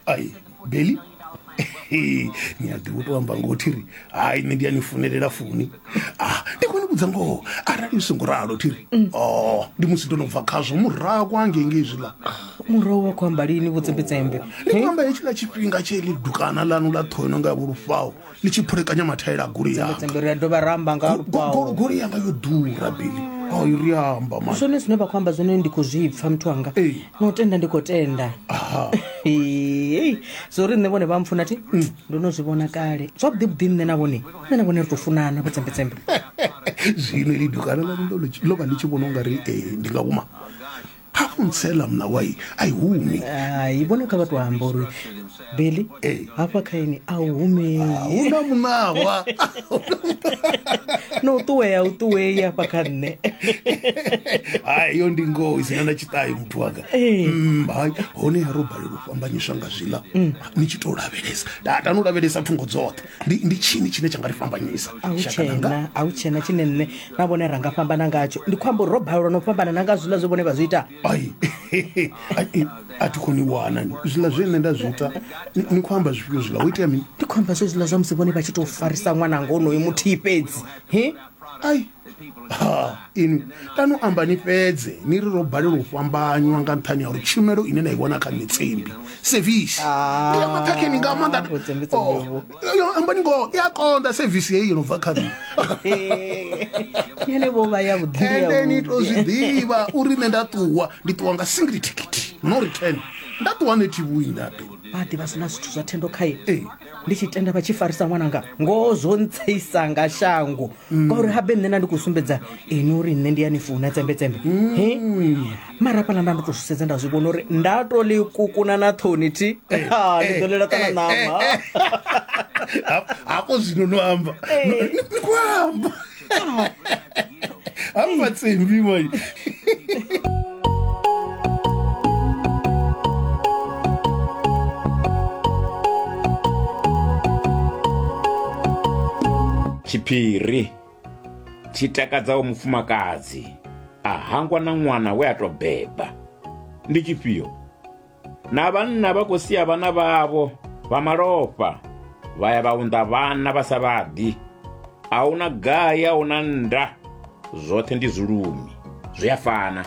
ai beli ni a ḓiwo to amba ngoho thiri hai nṋe ndi a ni funelela funi ah ndi khou ni vhudza ngoho arali u songo ralo thiri o ndi musi ndo no bva khazwo murahu kwa ngenge izwiḽa murahu wa khou amba lini vhudzembedzembe ndi khou amba hetshiḽa tshifhinga tshe ḽi dukana ḽanu ḽa ṱhono nga vhulufhao ni tshi phulekanya mathaela a goloi yanga ri a dovha ra amba nga lupawo goloi yanga yo ḓura bili o i ri amba ma zwone zwine vha khou amba zwone ndi khou zwi pfa muthu wanga Ee. no tenda ndi khou tenda aha Hey, zwo ri nṋe vhone vha mpfuna thi ndo no zwi vhona kale zwavhuḓi vhuḓi nṋe na vhone nṋe na vhone ri tou funana vho tsembetsembe zwino lidu kana ḽa ndo lo vha ndi tshi vhona u nga ri eh, ndi nga uma ha u ntsela mna wa i a i humi hai vhona kha vha tou amba uri billy Ee. hafha kha ini a u humei huna muṋawa no u ṱuwea u ṱuwei hafha kha nṋe hai yo ndi ngoho isina na tshiṱayo muthu wanga Ee. Mm, hai hone ya ro balelwa u fhambanyiswa nga zwiḽa ni tshi tou lavhelesa tatani u lavhelesa thungo dzoṱhe ndi ndi tshini tshine tsha nga ri fhambanyisa a hu shaka ḽanga? tshena a hu tshena tshine nṋe na vhone ra nga fhambana ngatsho ndi khou amba uri ro balelwa no fhambana na nga zwiḽa zwe vhone vha zwi ita ai ai, a thi khou ni wana zwiḽa zwe nṋe nda zwi ita ni- ni khou amba zwifhio zwiḽa wo itea mini ndi khou amba zwezwiḽa zwa musi vhone vha tshi tou farisa ṅwananga onoyo muthihi fhedzi he ai ha ini kani u amba ni fhedze ni ri ro balelwa u fhambanywa nga nṱhani ya uri tshumelo ine na i vhona kha mitsembi sevisi ah, ya maṱhakheni nga maanḓa oh, yo amba ni ngoho i a konḓa sevisi heyi yo no bva kha nṋe ene vho vha ya vhuḓiende ni to zwi ḓivha uri nṋe nda ṱuwa ndi ṱuwa nga single ticket no return nda ṱuwa nṋe thi vhuyi nda ḓe vha ḓivha sina zwithu zwa thendo khae ndi tshi tenda vha tshi farisa ṅwananga ngoho zwo ntseisa nga shango ngauri habe nṋe na ndi khou sumbedza ini uri nṋe ndi ya ni funa tsembetsembe he mara hafhaḽa nda ndo tou zwi sedza nda zwi vhona uri nda to ḽi kukuna na ṱhoni thi Ha, ni ḓo ḽela ṱana ṋama hafho zwino no amba No- ni ni khou amba I'm not saying we were. tshiphiri tshi takadzaho mufumakadzi a hangwa na ṅwana we a tou beba ndi tshifhio na vhanna vha khou sia vhana vhavho vha malofha vha ya vha unḓa vhana vha sa vhaḓi a hu na gai a hu na nda zwoṱhe ndi zwilumi zwi a fana